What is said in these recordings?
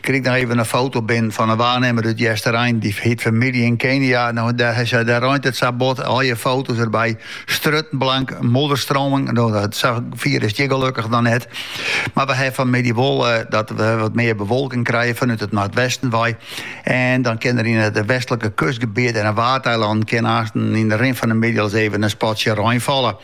Krij 'k noch even in foto binnen fan in waarnimmer út Easterein. Dy het famylje yn Kenia. No, dêr reint it sa bot. Allegear foto's derby. Strjitten blank, modderstroming. No, sa fier is it hjir gelukkich noch net. Mar we hawwe fanmiddei wol eh, dat we wat mear bewolking krije fanút it noardwesten wei. En dan kin der yn it westlike kustgebiet en de waadeilannen kin aansten yn de rin fan de middei al ris even in spatsje rein falle.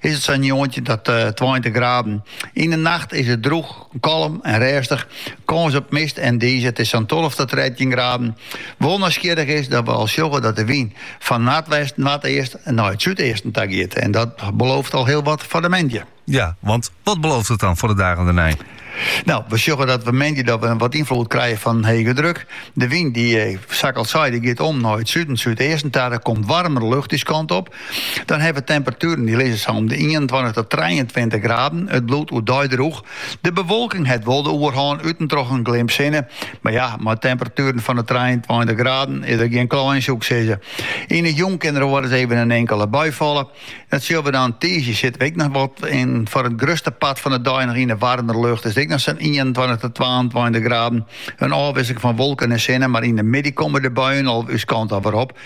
Is it sa'n njoggentjin ta tweintich graden. Yn de nacht is it droech, kalm en rêstich. Kâns op mist en dize, it is sa'n tolve ta trettjin graden. Wol nijsgjirrich is dat we al sjogge dat de wyn fan noardwest, noardeast nei it súdeasten ta giet. En dat belooft al hiel wat foar de moandei. Ja, want wat belooft it dan foar de dagen dêrnei? Nou, we sjogge dat we moandei dat we wat ynfloed krije fan in hege druk. De wyn die, eh, sa ik al sei, die giet om nei it suden, súdeasten ta. Der komt warmere lucht dizze kant op. Dan hawwe we temperatueren die lizze sa om de 21 tot 23 graden. It bliuwt oerdei droech. De bewolking het wol de oerhân, út en troch in glimp sinne. Maar ja, mei temperatueren fan de 23 graden is der gjin kleien, soe ik sizze. Yn 'e jûn kin der wolris even in inkele bui falle. Dat sille we dan tiisdei sitte we ek noch wat in, foar it grutste part fan de dei noch yn de waarmere lucht. Is it ek noch sa'n ienentweintich tot twaentweintich graden. In ôfwisseling fan wolken en sinne, mar yn de middei komme de buien al ús kant dan wer op.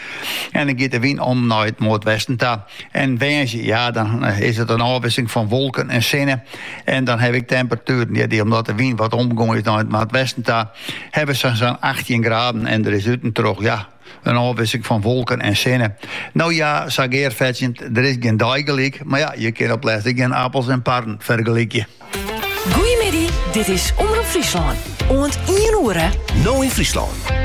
En dan giet de wyn om nei it noardwesten ta. En woansdei, ja, dan eh, is it in ôfwisseling fan wolken en sinne. En dan hawwe we temperatueren, ja, die omdat de wyn wat omgongen is nei it noardwesten ta, hawwe we sa'n 18 graden en der is út en troch, ja, In ôfwisseling fan wolken en sinne. No ja, sa gearfetsjend, der is gjin dei gelyk, mar ja, je kin op lêst ek gjin apels en parren fergelykje. Goeiemiddei, dit is Omroep Fryslân. Oant ien oere. No yn Fryslân.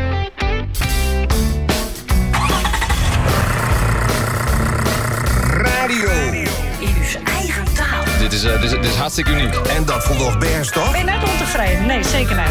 is, eh, dit, is, dit is hartstikke uniek. En dat vond nog best, toch? Ben je net ontevreden? Nee, zeker niet.